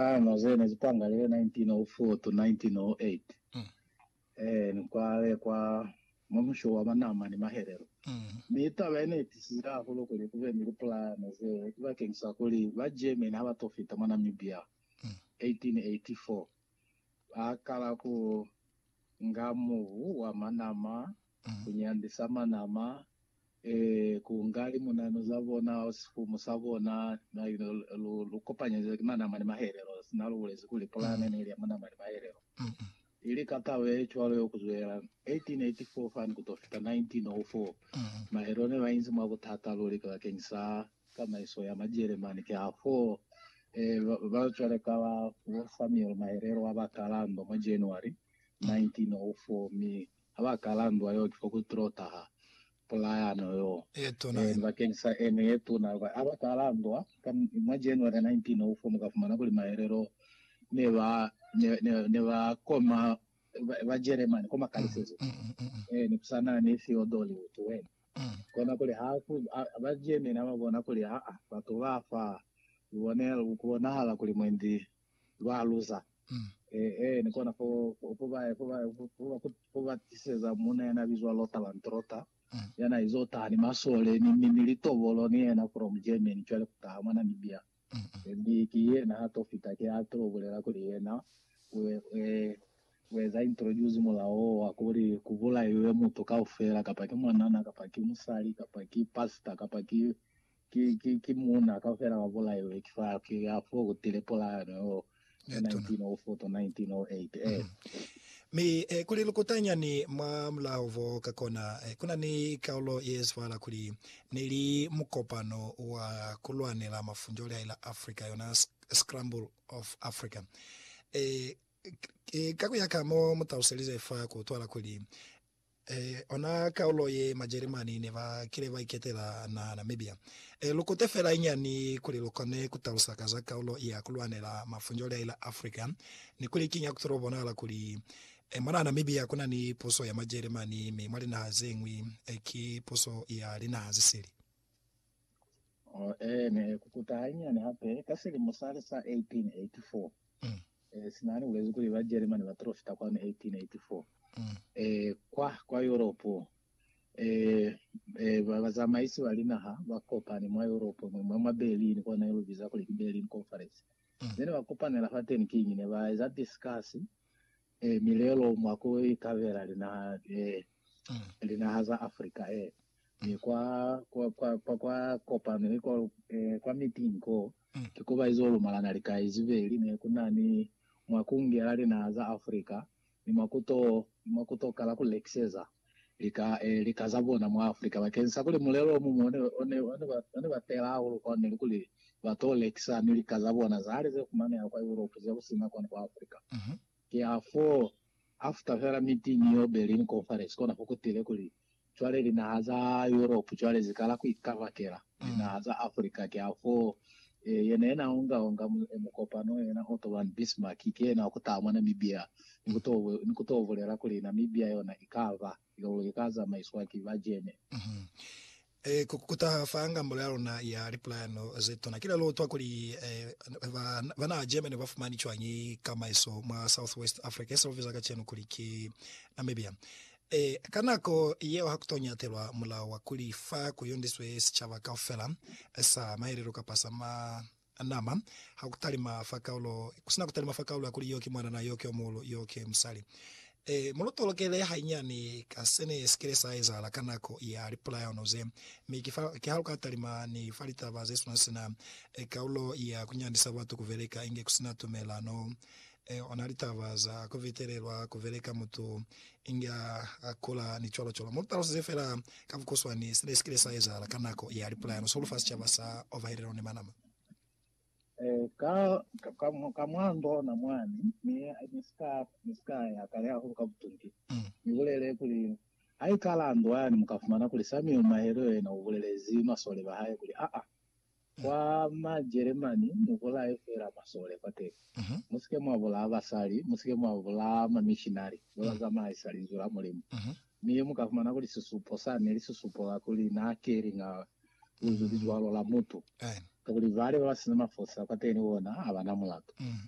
Hano ze ne zi pangalile 1904 to 1908, e, ni kwa le kwa Mumusho wa Manama ni Mahelelo. Mi taba ye ne itisizile hahulu kuli kube ni lipulana ze bakeng sa kuli ba Germany ha ba to fita mwa Namibia 1884, ba kala ku nga mubu wa Manama ku nyandisa manama, ee, ku nga limunanu za bona, sifumu sa bona, lu, lu, lu kopanyeza ki manama ni mahelelo, sina lu bulezi kuli pulane neli ya manama ni mahelelo, ili ka kalo ye cwalo yo kuzwelela 1884 fani kuto fita 1904. Mahelelo ne ba inzi mwa butata luli bakeni sa tamaiso ya Majelemani, ki hafo, ee, ba, ba cwale ka bo Samuel Mahelelo wa ba Kalando mwa January 1904, mi ha ba kala ndwa yeo ki fo ku tilo taha pulayano yeo ye tuna ino. Bakeng sa ene ye tuna yeo, ha ba kala ndwa ka mwa January 1904, mu ka fumana kuli maelelo ne ba, ne, ne, ne ba koma Bajeremani kwa makalisezo, ee, ne ku sa na ni Theodore Ottwell. Kona kuli ha ku, ha, Bajeremani ha ba bona kuli, aa, batu ba fa, lubonelo, ku bonahala kuli mwendi lwa luza. Mm. Eh, eh, ni kona fo, fo, fo ba, fo ba, fo, fo, fo, fo ba tiseza muna yana bizwa Lothar Landrotter, Mm. yana izo taha ni masole, ni, ni, ni litobolo, ni yena from Germany, cwale kutaha mwa Namibia. Mm, mm. Eh, Ndi ki yena ha to fita, ki ha to bulela kuli yena, u, eh, u eza introduce mulao o wa kuli ku bulaiwe mutu kaufela, kapa ki mwanana, kapa ki musali, kapa ki pastor, kapa ki, Ki, ki, ki muuna kaufela wa bulaiwe ki fire, ki ya foo ku tile polaano yo, ya Ye tuna. 1904 to 1908. Ee. Mi, eh, kuli lukutanyani mwa mulao bo ka kona, eh, ku na ni kaulo ye zwala kuli, ne li mukopano wa ku lwanela mafunjo lya ila Afrika, yona sc, scramble of Africa. Eh, k, eh, ka ku ya ka mo mu taluselize fa ku utwala kuli, Ee, ona kaulo ye Majeremani ne ba kile ba iketela naha Namibia. Ee, lu kute fela inyani kuli lu kone ku talusa ka za kaulo ya ku lwanela mafunjoli a ila Africa, ni kuli kiñi ha ku tolo bonahala kuli, ee, mwa naha Namibia ku na ni puso ya Majeremani, mi mwa linaha ze ñwi, ee, ki puso ya linaha ze sili. Oh, eh, ne kukuta hanyani hape ka silimo sale sa 1884. Mm. Eh, sinani ulezi kuli ba Jeremani ba trofita kwanu 1884. Mm. Eh, kwa, kwa Europe. Eh, eh, ba bazamaisi ba linaha ba kopani mwa Europe, mwe mwa, mwa Berlin, kwa ne lubiza kuli ki Berlin Conference. Mm. Then ba kopanela fa teni kinyi ne ba eza discuss eh, milelo mwa ku ikabela linaha, eh, mm. linaha za Africa, eh. kwa, kwa, kwa, kwa, kwa kopano ye kwa, eh, kwa meeting ko, mm. ki kuba izo lumalana lika izibeli ne kuna ni mwa kungela linaha za Africa ni mwa kuto, ni mwa kuto kala ku lekiseza lika, eh, lika za bona mwa Africa bakeng sa kuli mulelo omuñwi one, one, one, ba, one ba tela hahulu kwa ne likuli ba to lekisa ni lika za bona zahali ze fumaneha kwa Europe ze kusina kwani kwa Africa. Mm -hmm. Ki hafo after fela meeting yo Berlin Conference kona fo kutile kuli Cwale linaha za Europe cwale zikala ku ikabakela linaha za Africa. Kiafoo yena yena onga onga mukopano yena Otto von Bismarck ki yena wakutaha mwa Namibia ni kuto bulela kuli Namibia yona ikaba ilolo ika zamaiswa ki ba German. Ku kutaha fa ngambolo ya luna ya lipulayano zetuna kile luutwa kuli ba naha German ba fumani cwañi kamaiso mwa South West Africa, ye se lubiza kacenu kuli ki Namibia. Ee, ka nako yeo ha ku to ñatelwa mulao wa kuli fa ku yondiswe sicaba kaufela sa maelelo kapa sa manama, ha ku talima fa kaulo, ku si na ku talima fa kaulo ya kuli yo ki mwanana, yo ki yo muhulu, yo ki musali. Ee, mu lu tolokele hainyani ka se ne si kile sa ezahala ka nako ya lipulayano ze, mi ki fa, ki ha lu ka talima ni fa litaba ze swana sina kaulo ya ku nyandisa batu ku beleka inge ku si na tumelano Ee, ona litaba za ku fitelelwa ku beleka mutu inge a, a kula, ni cwalo cwalo. Mu lu talusize fela ka bukuswani sina si kile sa ezahala ka nako ya lipulayano sihulu fa sicaba sa Ovahelelo ni Manama. Ee, ka, ka, ka, ka mwa ndona mwani, mi ni si ka, ni si ka ya kale hahulu ka butungi. Mm. Ni bulele kuli, Haikala ndwani, mu ka fumana kuli Samuel Mahelo yena u bulelezi masole ba hae kuli, Aa, Kwa Majeremani, Mubulaye feela masole kwateni. Musike mwabulaa basali, musike mwabulaa mamishinari babazamaisa Linzwi la Mulimu. Mi mukafumana kuli sisupo sani neli sisupo ka kuli naakelinga Linzwi lizwalo la mutu, kakuli bale babasina mafosi akwateni bona abana mulatu.